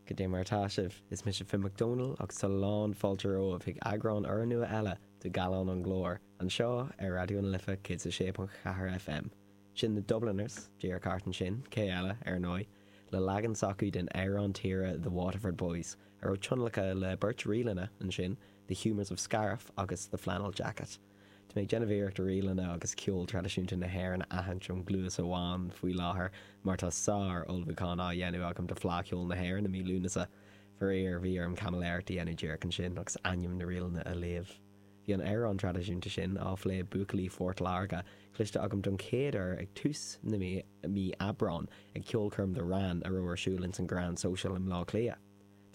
Go dté mar atá sibh, is mise Finn McDonald agus tá lán fáilte romhaibh chuig eagrán úrnua eile de Gallán an Ghlóir, anseo ar Raidió na Life 106.4 FM. Sin The Dubliners, díreach thart ansin, cé eile, ar ndóigh, le leagan s'acu den amhrán tíre The Waterford Boys, a raibh tionlacan le beirt ríleanna ansin, The Humours of Scariff agus The Flannel Jacket. Tá mé ag déanamh iarracht ríleanna agus ceol traidisiúnta na hÉireann a aithint ón gcluas amháin faoi láthair mar tá sár ullmhúchán á dhéanamh agam do Fleadh Cheoil na hÉireann i mí Lúnasa. Faraor, bhí orm caimiléireacht a dhéanamh díreach ansin agus ainm na ríleanna a léamh. Bhí an amhrán traidisiúnta sin, á phlé ag buachaillí Phort Láirge, cloiste agam don chéad uair ag tús na mí Aibreáin ag ceolchoirm The Rann a raibh ar siúl ins an Grand Social i mBleá Cliath.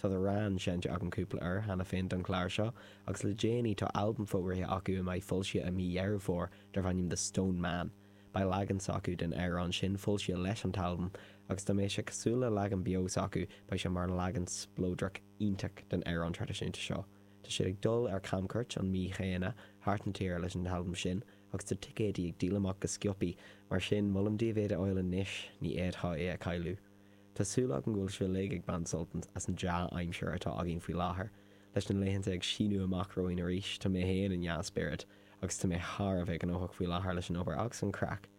Tá The Rann seinnte agam cúpla uair cheana féin don chlár seo agus le déanaí tá albam fógraithe acu a mbeidh foilsithe i mí Dheireadh Fómhair darb ainm The Stone Man. Beidh leagan s'acu den amhrán sin foilsithe leis an t-albam agus dá mbeadh sé cosúil le leagan beo s'acu beidh sé mar leagan spleodarach iontach den amhrán traidisiúnta seo. Tá siad ag dul ar camchuairt an mhí chéanna thart na tíre leis an t-albam sin agus tá ticéidí ag díol amach go sciopaí mar sin molaim daoibh iad a fháil anois, ní fhéadfá é a chailleadh. Tá súil agam go bhfuil sibh uilig ag baint sultaint as an dea-aimsir atá againn faoi láthair. Leis na laethanta ag síneadh amach romhainn arís, tá mé fhéin i ndea-spiorad, agus tá mé thar a bheith gnóthach faoi láthair leis an obair agus an craic.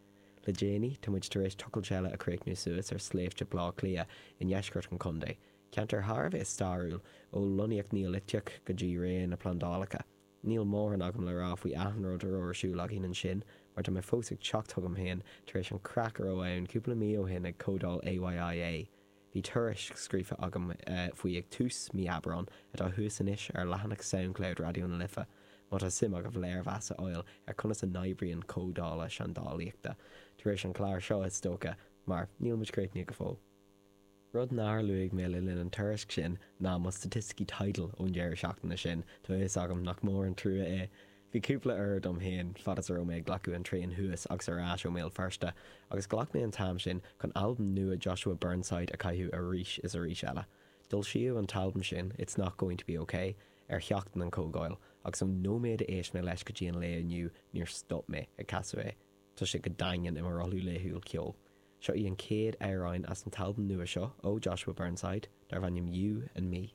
Le déanaí, tá muid tar éis tochailt eile a chríochnú suas ar sléibhte Bhleá Cliath i ndeisceart an chontae, ceantar thar a bheith stairiúil, ó lonnaíocht Neoiliteach go dtí ré na bplandálacha. Níl mórán agam le rá faoi achan rud a raibh ar siúl againn ansin mar tá mé fós ag teacht chugam féin tar éis an craic a raibh ann cúpla mí ó shin ag Comhdáil AYIA. Bhí tuairisc scríofa agam faoi ag tús mí Aibreán atá thuas anois ar leathanach Soundcloud Raidió na Life má tá suim agaibh léirmheas a fháil ar conas a n-oibríonn comhdhálacha seandálaíochta, tar éis an clár seo is dócha mar níl muid críochnaithe go fóill. Rud nár luaigh mé le linn an tuairisc sin ná mo staitisticí Tidal ón deireadh seachtaine sin, tá a fhios agam nach mór an trua é. Bhí cúpla uair dom féin fad is a raibh mé ag glacadh an traein thuas agus ar ais ó mBéal Feirste, agus ghlac mé an t-am sin chun albam nua Joshua Burnside a chaitheamh arís is arís eile. D'fhoilsíodh an t-albam sin, It's Not Going to Be Okay, ar sheachtain an chomhdháil, agus ón nóiméad a éist mé leis go dtí an lae inniu níor stop mé ag casadh é. Tá sé go daingean i mo rothlú laethúil ceoil. Seo é an chéad amhráin as an t-albam nua seo ó Joshua Burnside, darb ainm You and Me.